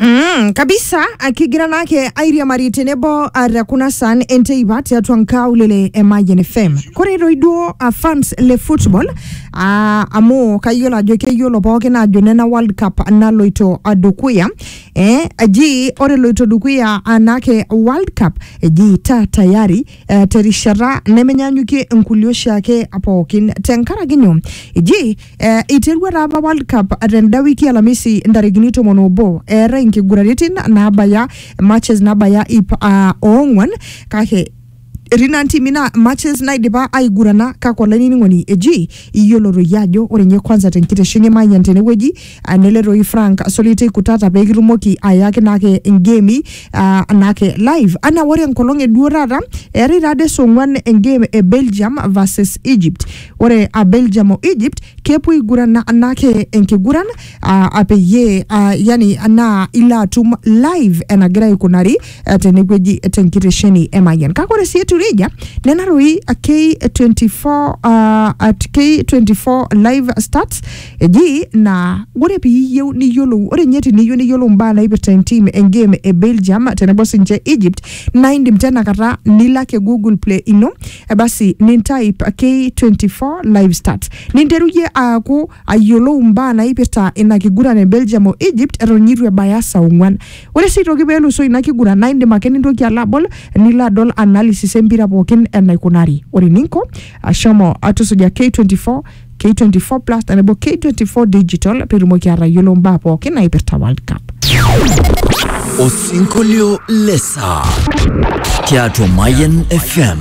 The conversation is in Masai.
Mm, kabisa akigira nake airia mari tenebo uh, te kuna san enteipa tiatua nkaulele e Mayian FM kore toi duo uh, fans le football uh, amu kayiolo ajo keyiolo pookin ajo nena world cup naloito uh, dukuya eh, eji ore loito dukuya anake world cup eji ta tayari uh, terishata nemenyanyukie nkulie oshiake pookin tenkaraki nyoo eji Eh, iterua taa apa World Cup tenda wiki alamisi ntarikini tomon obo eetae nkiguraritin naabaya matches naabaya ip ah, oong'wan kake etii naa ntimi naa matches naidipa aigurana kake olainining'oni eji iyiolo toi ajo ore ninye kwanza tenkitesheni Mayian tenewueji ah, nele toi Frank Solitei Kutata pee kitumoki ayaki naake ngemi ah, naake live anaa ore enkolong eduo taata eetae taade saa ong'wan engame e Belgium versus Egypt Ore a Belgium o Egypt kepuo aigurana anake enkiguran a peyie a yani naa ilo atum live enagira aikunari eh, tenewueji tenkitesheni e Mayian. Kake ore sii etiu nejia nena doi K24 ah, at K24 live stats eji naa ore piiyieu niyiolou ore ninye teniyieu niyiolou imbaa naipirta entim engame e Belgium tenebo sinche Egypt naa indim tenakata nilo ake Google play ino basi nintaip K24 live start ninteruyie aaku ayiolou mbaa naipirta ina kiguran e Belgium o Egypt eton eitu ebaya saa ong'uan. Ore sii aitoki pee elusoo ina kiguran naa indim ake nintoki alo abol nilo adol analysis empira pookin enaikunari. Ore eninko shomo tusuja K24 K24 plus tenebo K24 digital pee itumoki atayiolo mbaa pookin naipirta World Cup. Osinkolio le saa tiatua Mayan FM.